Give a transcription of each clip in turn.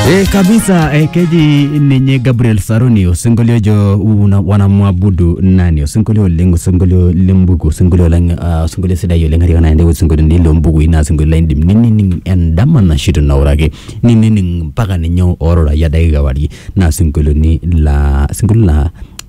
E, kabisa e, keji ninye Gabriel Saruni osinkolio ojo una- wanamwabudu nani osinkolio oleng osinkolio lembuku osinkolio lang uh, osinkolio sidai oleng katika naende osinkolio lombukui naa osinkolio laidim ninining endama nashito nauraki ninining mpaka ninye ororayia dakika warie naa osinkolio ni la osinkolio la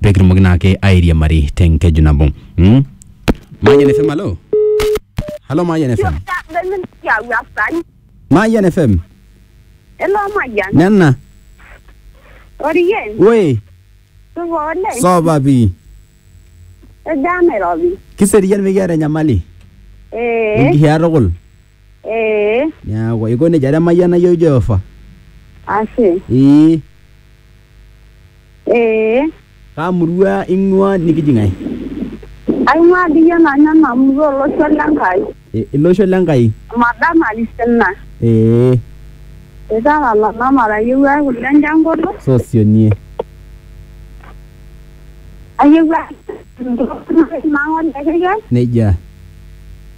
pee kitumoki naake airiamari te nkeju nabo mm? Mayian FM halo halo Mayian FM Mayian FM Hello, Mayan. nena Orien, we tuko ole. soba pi Ejame robi. kiserian mikiata enyamali Eh, nikihiaa tukul Ee, Neaku eiko nejia te mayiana iyiook Jehova. ashe. Ee, Ee, kaa murua ing'ua nikiji ng'ae? aing'ua dii iyie nanu ena murua olosho le Nkai. E, ilosho le Nkai. Madam Arisina. Ee, Italala namara ayiewuaki kule enjangolo. sosionie. Ayiewuaki nang'ole kekei. Nejia.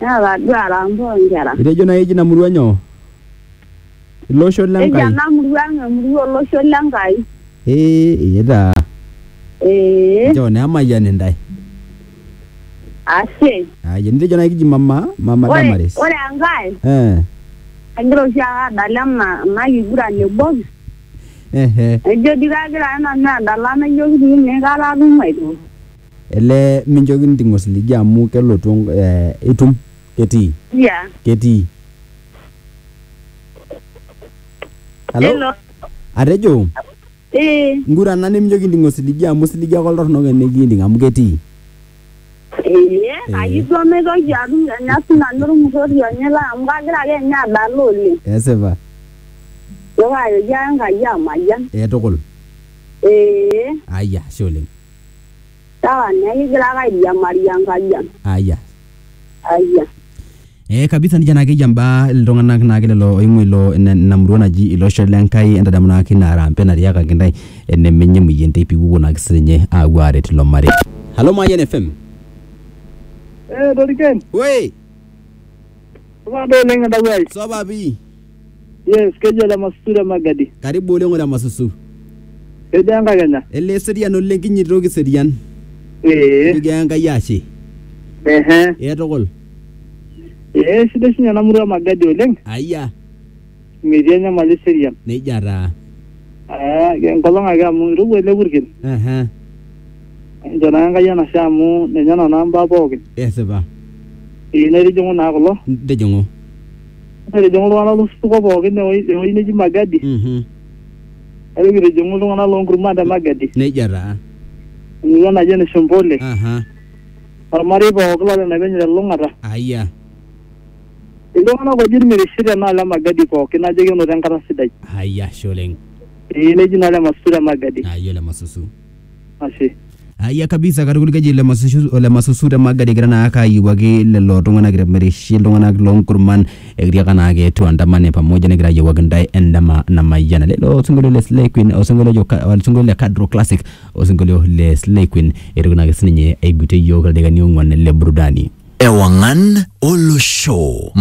Naa taduaa Rambo inkera. Itejo nai eji ina murua nyoo? Ilosho le Eji Nkai. ena murua ang emurua olosho le Nkai. Ee taa. Ee. Nchoo naa emayian intae. Ashe. Aya nitejo nai kiji mama, mama Ore, Damaris. ore enkae, Eh. agira oshi ake adala ena ena kiguran e box, Ehe. naijo dii kagira ake nanu adala naijo kitii ine aikata atum aitoki. Elee minchoki niting osiligi amu kelotu enk- eh, itum ketii Yeah. ketii Hello? Hello. atejo Eh. ngurana niminchoki inting osiligi amu osiligi ake oltorronok enikinting amu ketii Eh. Ayi duo maitoki atum anya sinanu ormutorioni lai amu kagira ake ninye adala oleng. esipa Neeku ajoki ake Enkai amayian. eh, tukul Eh. ayia ashe oleng Sawa, neeku igira ake airiamari Enkai ang. aya Ayia. Eh, kabisa nija naake eyia mbaa iltung'anak naake lelo oing'ua ilo ina ina murua naji ilosho le Nkai entadamu naake ina arambe natiakaki intae enemenye emueyian te piwuo naake sininye aapuo aaret ilo marei. Halo Mayian FM. Eh, Doriken, Woi, supa doi oleng entawuo ai. supa pii. Yes, kejo le Masusu le Magadi. karibu oleng ole masusu Kejo enkakenya. ele serian oleng kinyitoki serian Ee. kijo enkai ashe Ehe. ee tukul Ee sidai sinye ena murua e Magadi oleng. ayia Metii enyamali eserian. nejia taa Ah, enkolong ake amu irowua ele purkel. Aha, Enchoo naa Enkai enashe amu ninye nana mbaa pookin. esipa Ee naitijing'u naa kulo. tijing'u Etijing'u iltung'anak losupuko pookin ewoi- ewoi neji Magadi. Mhm. Ore kitijing'u iltung'anak loonkurman te Magadi. Nejia taa. Emurua naji ene Shombole. Aha. Ormarei pookin lolena penyo te Lulung'ata. Aya. Iltung'anak oji Irmirishi tenaalo e Magadi pookin najo kenoto enkata sidai. Aya, ashe oleng. Ee neji naa ole Masusu te Magadi. Aya ole Masusu. ashe Aya kabisa katukul keji ole Masusu- ole masusu te magadi egira naa ake ayiewuaki lelo tung'anak irmirishi iltung'anak loonkurman ekitiaka naa ake tuandamane pamoja negira ayiewuaki intae endama namayiana lelo osinkolio le Slay Queen osinkolio ojo ka- osinkolio le Kadro Classic osinkolio le Slay Queen eitoki naake sininye aigutie iyiook ildaikani ong'uan le burudani Ewangan Olosho.